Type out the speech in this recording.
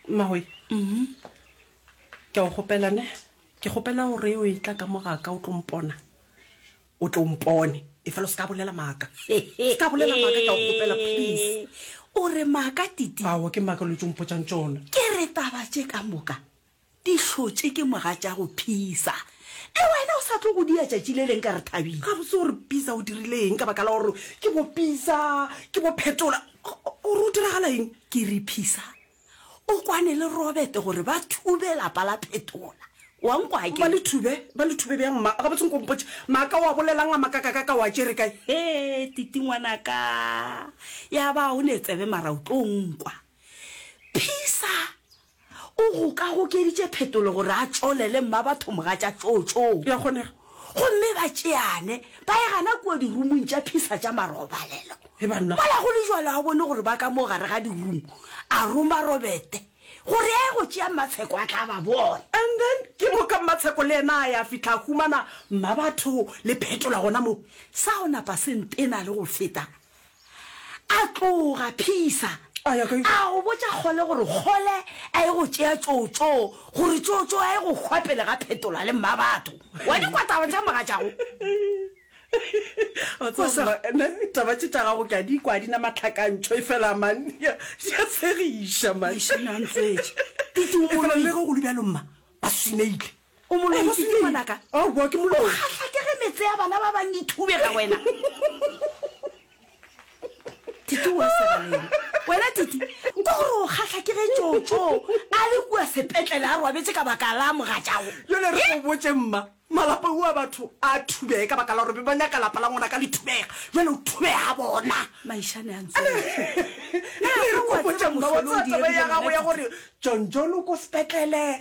mmagoe mm-hmm. ke a o gopela ne ke gopela gore o e tla ka mogaka o tlo mpona o tlo mpone e fela o se ka bolela maaka ka bolela maaka ke a o gopela please o re maaka titi ao ke maaka lo tso mpotsang tsona ke re taba tse ka moka Di hlotše ke moga tša go phisa. E wena o sa tlo go dia tšatši le leng ka re thabile. Gabotse o re Pisa o dirile eng ka baka la gore ke bo Pisa, ke bo Phetola? O re o diragala eng? Ke re Pisa o kwane le Robert gore ba thube lapa la Phetola. Wa nkwa ke? Ba le thube? Ba le thube bjang mma? Gabotse nko mpotše. Maaka o a bolela'ng a makakakaka o a tšere kae? Hee Titi ngwanaka, ya ba o ne tsebe mara o tlo nkwa. Pisa O gokagokeditše phetolo gore a tšolele mmabatho mogatša tšootšoo. E a kgonega. Gomme ba tšeane, ba egana kua dirumong tša phisa tša marobalelo. He banna. Mola go le jalo a bone gore ba ka mo gare ga dirumu, a roma Robete gore a ye go tšea Mmatsheko a tla ba bona. And then ke moka Mmatsheko le yena a ya fihla a humana mmabatho le phetola gona moo. Sa go napa se ntena le go feta. A tloga Phisa a ya kae? A go botša Kgole gore Kgole a ye go tšea Tšootšoo gore Tšootšoo a ye go hwa pele ga Phetola le Mmabatho. Wa di kwa taba tša mogatšago? Wa tseba Mma, nna taba tše tša gago ke a di kwa, di na matlhakantšho efela man, di a di a tshegiša man. Eish, nna ntswetše. Ke tumolo e. Efela le ge go le bjalo Mma, ba swineile. O moloi ke eng? Ngwanaka. Oh, boa ke moloi. O kgahla ke ge metse ya bana ba bang e thubega wena. Titi wa segaleng. Wena Titi, ko gore o kgahla ke ge Tšotšo a le kua sepetlele a robetse ka baka la mogatšago. Jale re go botše mma, malapa ua batho a thubege ka baka la gore be ba nyaka lapa la ngwanaka le thubega. Jale o thubega bona. Maishane a ntse. Jale re go botše mma, wa tseba taba ya gago ya gore John John o ko sepetlele,